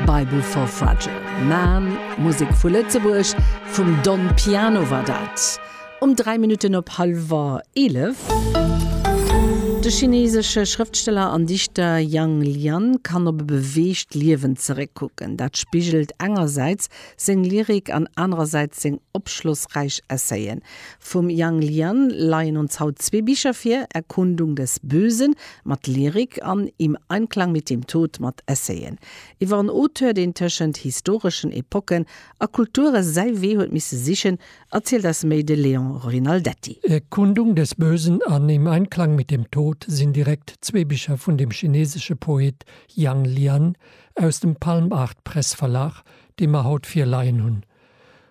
Bible for Fragile Man, Musek vu Lëtzebuerg, vum Don Piano war dat um 3 Minutten op hallwer 11. De chineesesche Schrëftsteller an Dichter Yang Lian kann op e beweegt Liewen zeréckkucken, dat spigelt engersäits seng Lyrik an anerersäits seng opschlossräich Essayen. Vum Yang Lian leien ons haut zwee Bicher vir, Erkundung des Bösen Mat Lyrik an im Einklang mit dem Tod mat Essayen iwwer en Auteur, deen tëschent historeschen Epocken a Kulture säi Wee huet misse sichen, erzielt eis méi de Léon Rinaldetti. Erkundung des Bösen an Im Einklang mit dem Tod sinn direkt zwee Bicher vun dem chinesesche Poet Yang Lian aus dem Palm Art Press Verlag, déi mer haut virleien hunn.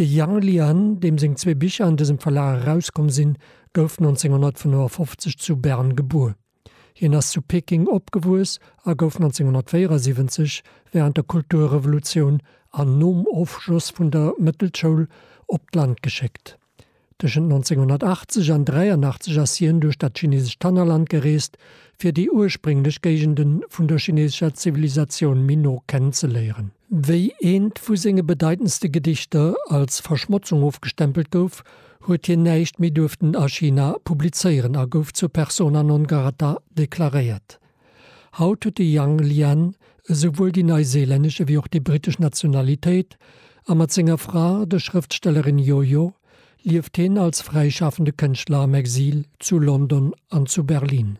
De Yang Lian, deem seng zwee Bicher an dësem Verlag erauskomm sinn, gouf 1955 zu Bern gebuer. Hien ass zu Peking opgewuess a gouf 1974, wärend der Kulturrevolutioun an nom Ofschloss vun der Mëttelschoul, op d'Land geschéckt. Tëschent 1980 an 83 ass hien duerch dat chinesescht Tannerland gereest, fir déi ursprénglech Géigende vun der chinesescher Zivilisatioun méi no kennenzeléieren. Wéi eent vu senge bedeitendste Gedichter als Verschmotzung ofgestempelt gouf, huet hien näischt méi duerften a China publizéieren a gouf zur persona non grata deklaréiert. Haut huet de Yang Lian esouwuel déi neiseelännesch ewéi och déi brittesch Nationalitéit, a mat senger Fra, der Schrëftstellerin Yoyo, lieft hien als fräischafende Kënschtler am Exil zu London an zu Berlin.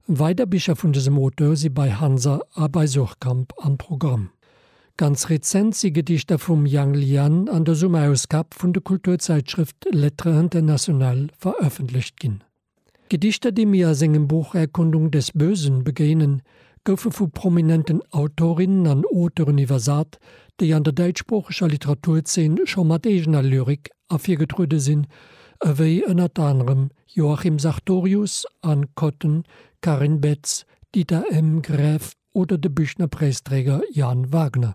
Weider Bicher vun dësem Auteur si bei Hansa a bei Suhrkamp am Programm. Ganz rezent si Gedichter vum Yang Lian an der Summerausgab vun de Kulturzäitschrëft Lettres Internationales verëffentlecht ginn. D'Gedichter, déi mir a sengem Buch Erkundung des Bösen begéinen, goufe vu prominenten Autorinnen an Auteuren iwwersat, déi an der däitschsproocheger Literaturzeen scho mat eegener Lyrik ervirgetruede sinn, ewéi ënnert anerem Joachim Sartorius, Anne Kotten, Karin Betz, Dieter M. Graeff oder de Büchner-Präisträger Jan Wagner.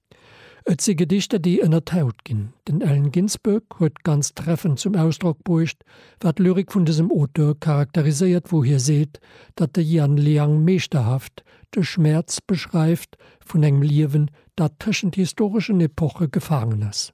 Et si Gedichter, déi ënner d'Haut ginn. Den Allen Ginsberg huet ganz treffend zum Ausdrock bruecht, wat d'Lyrik vun dësem Auteur charakteriséiert, wou hie seet, datt de Yann Liang meeschterhaft de Schmäerz beschreift vun engem Liewen, dat tëschent historeschen Epoche gefaangen ass.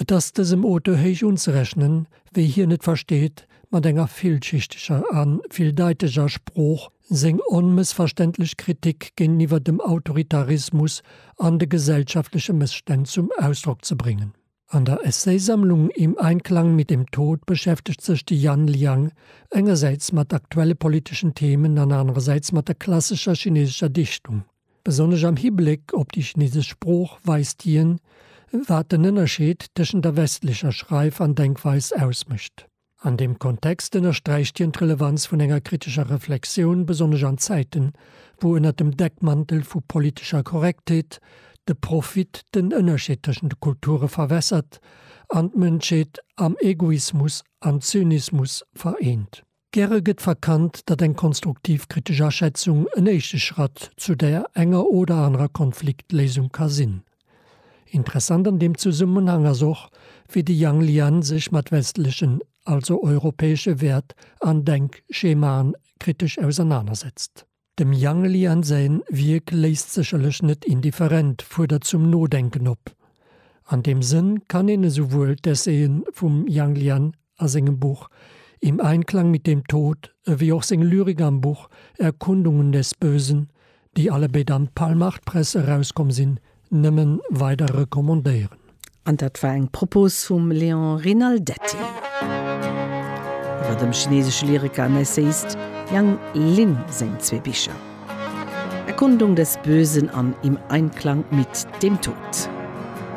Et ass dësem Auteur héich unzerechnen, wéi hien et versteet, mat enger villschichteger a villdeiteger Sprooch seng onmëssverständlech Kritik géinteniwwer dem Autoritarismus an de gesellschaftleche Mësstänn zum Ausdrock ze bréngen. An der Essaysammlung Im Einklang mit dem Tod beschäftegt sech de Yan Liang engersäits mat aktuelle politeschen Themen an anerersäits mat der klassescher chinesescher Dichtung. Besonnesch am Hibléck op déi chinesesch Sprooch weist hien, wat den Ënnerscheed tëschent der westlecher Schreif an Denkweis ausmécht. An deem Kontext ënnersträicht hien d'Relevanz vun enger kritescher Reflexioun, besonnesch an Zäiten, wou ënner dem Deckmantel vu politescher Korrektheet de Profit den Ënnerscheed tëschent de Kulture verwässert an d'Mënschheet am Egoismus an Zynismus vereent. Gäre gëtt verkannt, datt eng konstruktiv kritesch Aschätzung en éischte Schratt zu der enger oder anerer Konfliktléisung ka sinn. Interessant an deem Zesummenhang ass och, wéi de Yang Lian sech mat westlechen, also europäesche Wäert an Denkschemaen kritesch ausernanersetzt. Dem Yang Lian säin Wierk léisst sécherlech net indifferent, fuerdert zum Nodenken op. An deem Sënn kann een esouwuel d'Essayen vum Yang Lian a sengem Buch Im Einklang mit dem Tod ewéi och seng Lyrik am Buch Erkundungen des Bösen, déi allebéid am Palmach-Press erauskomm sinn, Nëmmen weider recommandéieren. An dat war eng Propos vum Léon Rinaldetti iwwer dem chinesesche Lyriker an Essayist Yang Lin seng zwee Bicher Erkundung des Bösen an Im Einklang mit dem Tod.